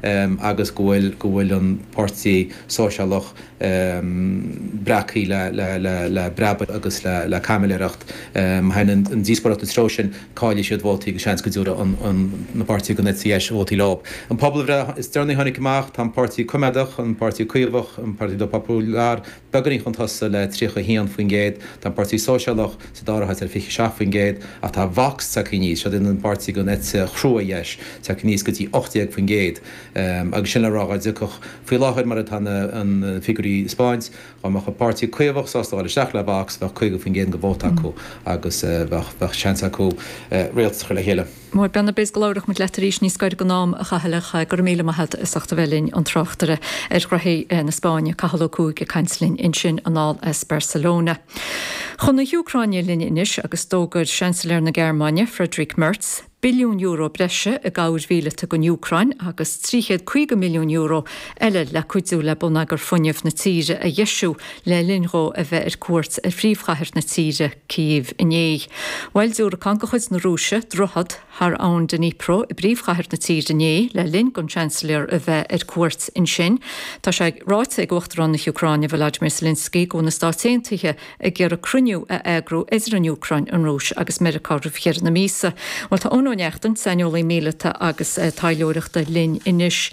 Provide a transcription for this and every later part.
agus go bhfuil go bhfuil an Páirtí Sóisialach breactha le le le le breabadh agus le le caimiléireacht. Má theann an díospóireacht an treo sin, caillfidh siad vótaí agus seans go dtabharfadh an an na páirtithe den eite dheis vótaí leo. An pobalbhreith is deireanaí a tháinig amach, tá an Páirtí Coimeádach, an Páirtí Caomhach, an Partido Popular, beagáinín chun tosaigh le 31%, tá an Páirtí Sóisialach sa dara háit le 27%, ach tá Vox tagtha aníos, siod an an páirtí den eite chrua dheis, tagtha aníos go dtí 18%. Agus sé le rá, dhá dtiocfadh, faoi láthair mar atá na figiúirí ag 'speáint, dhá mbeadh an páirtí Caomhach sásta dhul isteach le Vox, bheadh 50% den vóta acu agus bheadh seans acu rialtas a chur le chéile. Maram beannacht go labhroidh muid leat arís níos gaire don am, a Chathail, ach go raibh míle maith agat as ucht a bheith linn, an tráchtaire ar ghnothaí na Spáinne, Cathal Ó Cuaig ag caint linn ansin anall as Barcelona. Chun na hÚcráine linn anois agus d'fhógair Seansailéir na Gearmáine, Friedrich Merz, billiún euro breise i gcabhair mhíleata don Úcráin agus 350 milliún euro eile le cuidiú le bonneagar fuinnimh na tíre a dheisiú, le linn dhó a bheith ar cuairt ar phríomhchathair na tíre, Cív, inné. Bhuail diúracán de chuid na Rúise droichead thar abhainn Dnipro i bpríomhchathair na tíre inné le linn don Seansailéir a bheith ar cuairt ansin. Tá sé ráite ag Uachtarán na hÚcráine, Volodymyr Zelensky, go bhfuil na Stáit Aontaithe ag iarraidh cruinniú a eagrú idir an Úcráin, an Rúis agus Meiriceá roimh dheireadh na míosa. Bhuel, tá Eoin Ó Neachtain, saineolaí míleata agus taidhleoireachta, linn anois.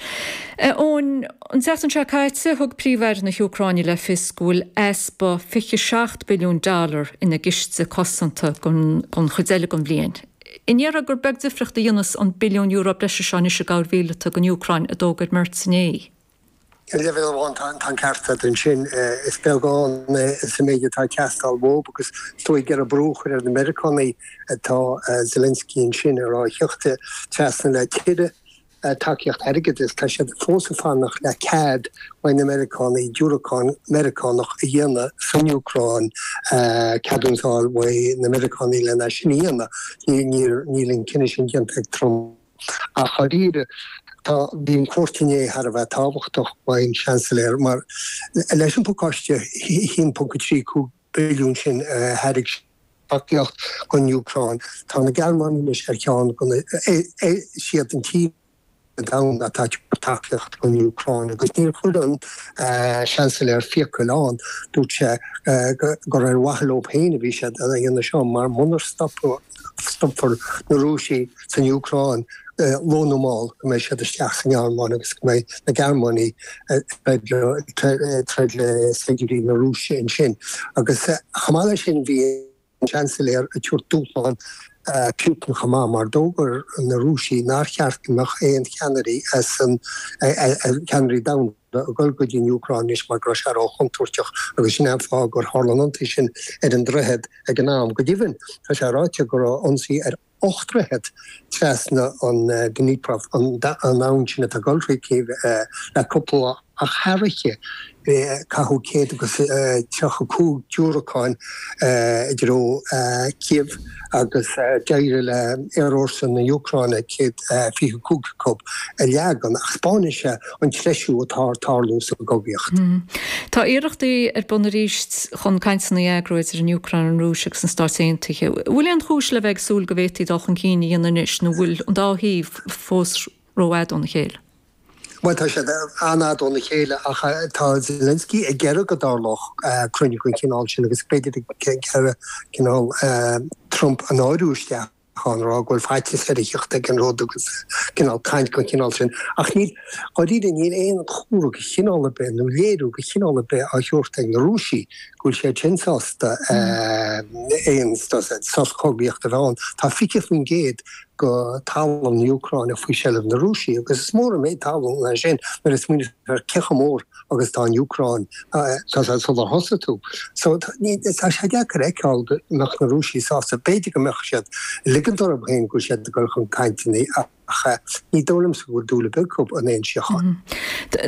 Eoin. An tseachtain seo caite, thug Príomh-Aire na hÚcráine le fios go bhfuil easpa 27 billiún dollar ina gciste cosanta don chuid eile den bhliain. Ar ndóigh gur beag difriocht a dhéanfas an billiún euro breise seo anois i gcabhair mhíleata don Úcráin, a d'fhógair Merz inné. Ar leibhéal amháin tá an ceart agat ansin. Is beag ann é sa méid atá ag teastáil uaidh agus is dóigh ag iarraidh brú a chur ar na Meiriceánaigh atá Zelensky ansin, a rá, thíocht trasna le tuilleadh tacaíocht airgeadais, tá siad fós ag fanacht le cead uaidh na Meiriceánaigh diúracán Meiriceánach a dhéanamh san Úcráin, ceadúnas a fháil uaidh na Meiriceánaigh lena sin a dhéanamh. Níl an cinneadh sin déanta ag Trump ach dháiríre. Bhí an cuairt inné thar a bheith tábhachtach, ón Seansailéir, mar leis an bpacáiste 1.35, billiún sin a thairg siad mar thacaíocht don Úcráin. Tá na Gearmánaigh anois ar cheann de na. Is iad an tír sa domhan atá ag tabhairt tacaíochta don Úcráin agus níor chuir an Seansailéir fiacail ann, dúirt sé gur ar mhaithe leo féin a bhí siad á dhéanamh seo mar munar stopadh stopfar na Rúisigh san Úcráin luath nó mall, go mbeidh siad isteach sa nGearmáin agus go mbeidh na Gearmánaigh ag troid le saighdiúirí na Rúise ansin. Agus chomh maith leis sin, bhí an Seansailéir ag tabhairt dúshlán Putin chomh maith, mar d'fhógair na Rúisigh nár cheart go mbeadh aon cheannairí as an, cheannairí domhanda, le dhul go dtí an Úcráin anois mar go raibh sé ró-chontúirteach agus sin é an fáth gur tharla an t-ionsaí sin ar an droichead ag an am. Go deimhin, tá sé ráite go raibh ionsaí ar ocht ndroichead trasna an Dnipro an abhainn sin atá ag dul thríd Kyiv le cúpla lá ach aréir caitheadh céad agus tríocha cúig diúracáin i dtreo Kyiv. agus d'éirigh le aerfhórsa na Úcráine céad fiche cúig acu a leagan, ach 'spáineann sé an treisiú atá ag tarlú sa gcogaíocht. Tá iarrachtaí ar bun arís chun cainteanna a eagrú idir an Úcráin, an Rúis agus na Stáit Aontaithe. An bhfuil aon chúis le bheith ag súil go bhféadfaí dul chun cinn a dhéanamh anois, nó an bhfuil an dá thaobh fós rófhada óna chéile? Bhuel, tá siad an-fhada óna chéile ach tá Zelensky ag iarraidh go dtarlódh cruinniú den chineál sin agus b'fhéidir ag iarraidh cineál Trump a náiriú isteach ann, a rá go bhfuil faitíos air a theacht ag an rud agus cineál caint den chineál sin. Ach níl, dháiríre, níl aon chomhartha de chineál ar bith nó léiriú de chineál ar bith á thabhairt ag na Rúisigh go bhfuil siad sin sásta aon sos cogaíochta a bheith ann. Tá 20% de thalamh na Úcráine faoi sheilbh na Rúisigh agus is mór an méid talún é sin nuair a smaoinítear ar cé chomh mór agus atá an Úcráin sular thosaigh tú. So, tá sé deacair a fheiceáil go mbeadh na Rúisigh sásta, b'fhéidir go mbeadh siad ag ligint orthu féin go bhfuil siad ag dul chun cainteanna ach ní dóigh liomsa go bhfuil dúil ar bith acu in aon síocháin.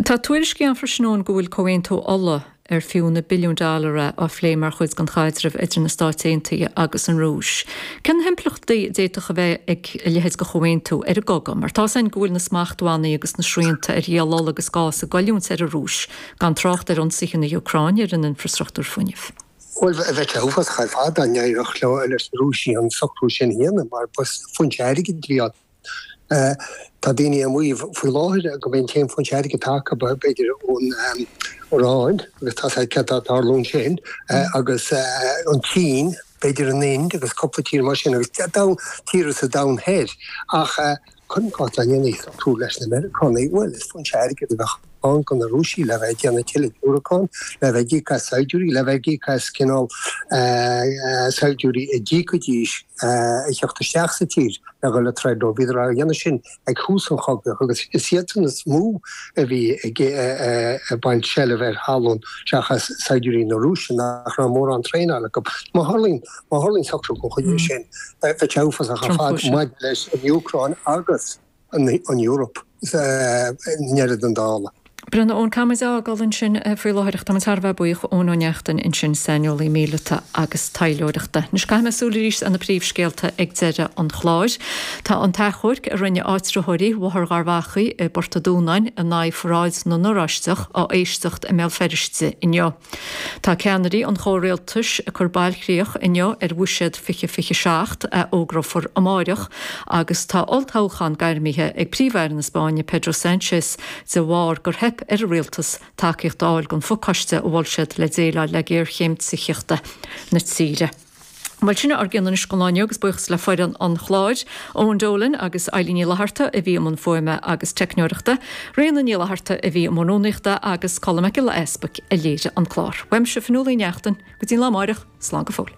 Tá tuairiscí ann freisin go bhfuil comhaontú ola ar fiú na billiúin dollar é, á phlé mar chuid den chaidreamh idir na Stáit Aontaithe agus an Rúis. Cé na himpleachtaí a d'fhéadfadh a bheith ag a leithéid de chomhaontú ar an gcogadh? Mar tá's againn go bhfuil na smachtbhannaí agus na srianta ar dhíol ola agus gás ag goilliúint ar an Rúis, gan trácht ar ionsaithe na hÚcráine ar an infreastruchtúr fuinnimh. Bhuel, bheadh sé uafásach ar fad dá n-éireodh leis na Rúisigh an socrú sin a dhéanamh, mar ba foinse airgid a bheadh ann. Tá daoine ag maíomh faoi láthair gurb é an t-aon foinse airgid atá acu, b'fhéidir, ón Iráin, agus tá sé cinnte dá dtarlódh sin, agus an tSín, b'fhéidir an Ind agus cúpla tír mar sin, agus tíortha sa domhan thoir. Ach cuirim i gcás dá ndéanfaí socrú leis na Meiriceánaigh, bhuel, is foinse airgid a bheadh ann. airgead ag na Rúisigh le bheith ag déanamh tuilleadh diúracán, le bheith ag íoc as saighdiúirí, le bheith ag íoc as cineál saighdiúirí a d'íocfaidís a theacht isteach sa tír le dhul ag troid leo. Bhíodar á dhéanamh sin ag tús an chogaidh agus is iadsan is mó a bhí ag baint seilbh ar thalamh seachas saighdiúirí na Rúise nach raibh mórán traenáil acu. Má tharlaíonn socrú den chineál sin, beidh sé uafásach ar fad maidir leis an Úcráin agus. an Eoraip i ndeireadh an dála. Drochlíne ón gCeamboíd againn ansin faoi láthair ach tá muid thar a bheith buíoch d'Eoin Ó Neachtain ansin, saineolaí míleata agus taidhleoireachta. Anois caithfidh mé súil arís ar na príomhscéalta ag deireadh an chláir. Tá an t-achomharc a rinne áitritheoirí Bhóthar Gharbhachaidh i bPort a Dúnáin in aghaidh pharáid na nOráisteach á éisteacht i mBéal Feirste inniu. Tá ceannairí an chomhrialtais ag cur bailchríoch inniu ar Bhuiséad 2027, a fhógrófar amáireach, agus tá olltoghchán gairmithe ag Príomh-Aire na Spáinne Pedro Sánchez de bharr gur theip ar a rialtas tacaíocht a fháil don phacáiste a mhol siad le déileáil le géarchéim tithíochta na tíre. Bhuel, sin a raibh againn in Iris an lá inniu agus buíochas le foireann an chláir, Eoin Dolan agus Eilín Ní Fhlatharta a bhí i mbun fuaime agus teicneoireachta, Ríona Ní Fhlatharta a bhí i mbun rúnaíochta agus Colm Mac Giolla Easbuic a léirigh an clár. Uaimse, Fionnuala Uí Neachtain, go dtí an lá amáireach, slán go fóill.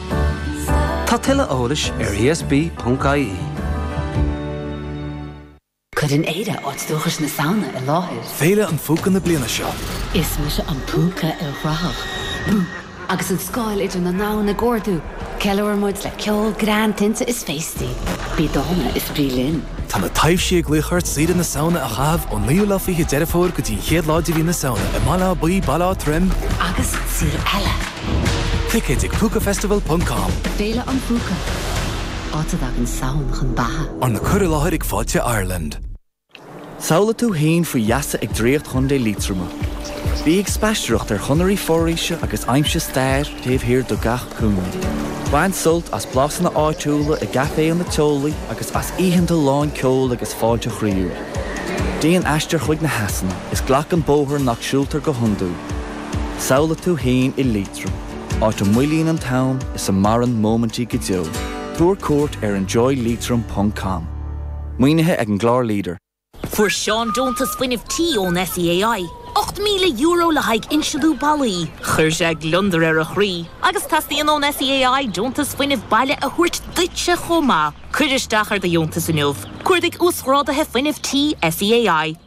Tá tuilleadh eolais ar ESB.ie. Cuireann Éire áit dúchais na Samhna i láthair. Féile an Phúca na bliana seo. Is mise an Púca ilchruthach. Agus an scáil idir na ndomhan ag ardú, ceiliúrann muid le ceol, greann, tinte is féastaí. Bí dána is bí linn! Tá na taibhsí ag glaoch ort saoire na Samhna a chaitheamh ón 9ú lá 20ú Deireadh Fómhair go dtí an 1ú lá de mhí na Samhna i mBaile Átha Buí, Baile Átha Troim, Agus saol eile! Ticéid ag Púcafestival ponc com. Féile an Phúca, áit a dtagann Samhain chun beatha. Arna cur i láthair ag Fáilte Ireland. Samhlaigh tú fhéin faoi gheasa ag draíocht Chontae Liatroma. Bí ag spaisteoireacht ar chonairí foraoise agus aimsigh stair taobh thiar de gach cúinne. Bain sult as blasanna áitiúla i gcaiféanna teolaí agus as oícheanta lán ceoil agus fáilte chroíúil. Déan aistear chuig na heasanna is glac an bóthar nach siúltar go hiondúil. Samhlaigh tú fhéin i Liatroim, áit a moillíonn an t-am is a maireann móimintí go deo. Tabhair cuairt ar enjoyliatroim ponc com. Maoinithe ag an gclár leader. Fuair Seán deontas fuinnimh tí ón SEAI, €8,000 le haghaidh insealú ballaí. Chuir sé gliondar ar a chroí agus teastaíonn ón SEAI deontas fuinnimh baile a thabhairt duitse chomh maith. Cuir isteach ar do dheontas inniu. Cuardaigh Uasghráduithe Fuinnimh Tí SEAI.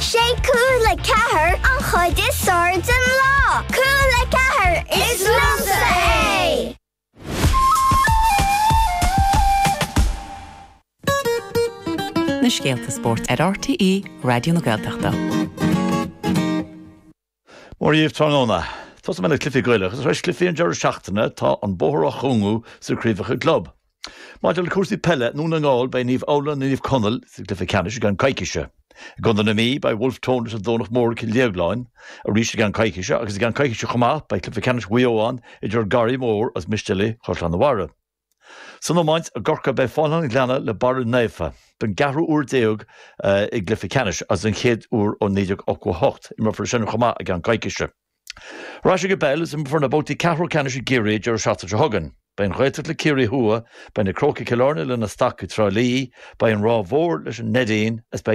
'Sé Cúla Ceathair an chuid is fearr den lá. Cúla Ceathair, is liomsa é! na scéalta spóirt ar RTÉ Raidió na Gaeltachta. Mora dhaoibh tráthnóna. Tosóidh mé le cluichí Gaelacha agus tar éis cluichí an deireadh seachtaine tá an bóthar á chúngú sna craobhacha club. Maidir le cúrsaí peile i nDún na nGall beidh Naomh Adhamhnáin is Naomh Conaill sa gcluiche ceannais i gceann coicíse. I gContae na Mí beidh Bhulf Tón agus An Domhnach Mór Cill Dhéagláin arís i gceann coicíse agus i gceann coicíse chomh maith beidh cluiche ceannais Mhaigh Eo ann idir Garraí Mór agus Mistéalaigh Chaisleán a' Bharraigh. San iomáint, i gCorcaigh, beidh Fánaithe an Ghleanna le Barra Naofa don gceathrú uair déag i gcluiche ceannais agus den chéad uair ó 1988. Imreofar é sin chomh maith i gceann coicíse. Ar ais ag an bpeil agus imreofar na babhtaí ceathrú ceannais i gCiarraí an deireadh seachtaine seo chugainn. Beidh an Ghaeltacht le Ciarraí Thuaidh, beidh na Crócaigh Chill Airne le na Stacaigh Trá Lí, beidh an Ráth Mhór leis an Neidín, is beidh